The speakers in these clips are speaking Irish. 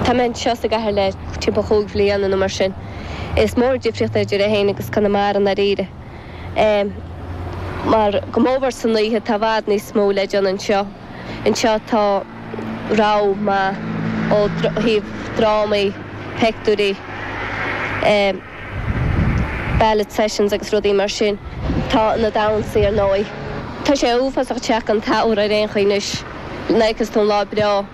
Tá mé anseo sa gcathair le timpeall chúig bhliana nó mar sin. Is mór an difríocht idir é féin agus Conamara, i ndáiríre. Mar go mór mór san oíche tá i bhfad níos mó le déanamh anseo. Anseo tá rogha maith ó thaobh drámaí, peictiúirí. ballad sessions agus rudaí mar sin. Tá ionad ann ar ndóigh. Tá sé uafásach te gan aer ar aon chaoi anois, nuair a fheiceas tú an lá breá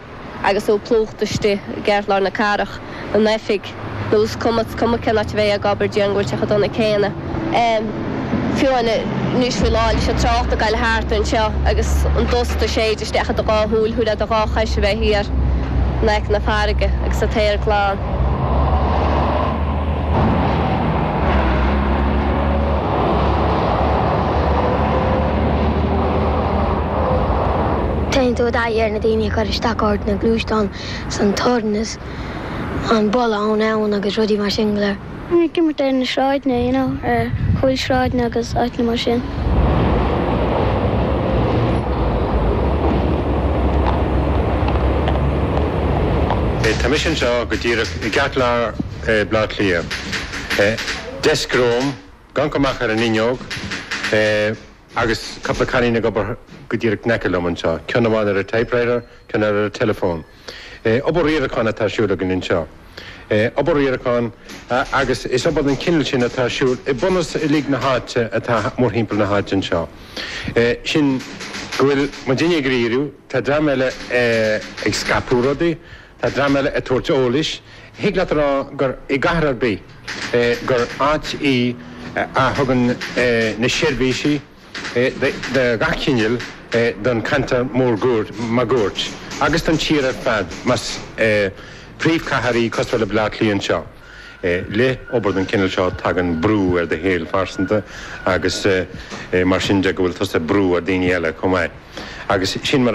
agus tú plúchta istigh i gceartlár na cathrach, in oifig, nó is cuma, is cuma cén áit a bheidh ag obair dianghortach chomh dona céanna. Em. fiú amhain anois faoi láthair leis an trácht ag gabháil thart anseo agus an dust ag séideadh isteach i do dhá shúil, thabharfá do dhá chois a bheith thiar in aice na farraige agus an t-aer glan. Téann tú i dtaithí ar na daoine ag cur isteach ort, na gluaisteáin 's an torann 's an boladh ón abhainn agus rudaí mar sin go léir. Bhí mé ag imirt ar na sráideanna, you know, ar chúl sráideanna agus áiteanna mar sin. Tá mise anseo go díreach i gceartlár Bhaile Átha Cliath. Deisc romham, ag amharc amach ar an fhuinneog agus cúpla cailín ag obair go díreach in aice liom anseo, ceann amháin ar an typewriter, ceann eile ar an teileafón. Obair riaracháin atá ar siúl againn anseo. Obair riaracháin, agus is obair den chineál sin atá ar siúl i mbunús uilig na háite atá mórthimpeall na háite anseo. Sin go bhfuil muidinne ag riarú, tá dream eile ag scaipeadh rudaí, tá dream eile ag tabhairt eolais. Thig leat a rá gur i gcathair ar bith gur áit í a thugann na seirbhísí, de gach cineál don cheantar mór máguaird agus don tír ar fad más príomhcathair í cosúil le Bleá Cliath anseo. Le obair den chineál seo tagann brú ar do shaol phearsanta agus mar sin de go bhfuil tusa ag brú ar dhaoine eile chomh maith agus sin mar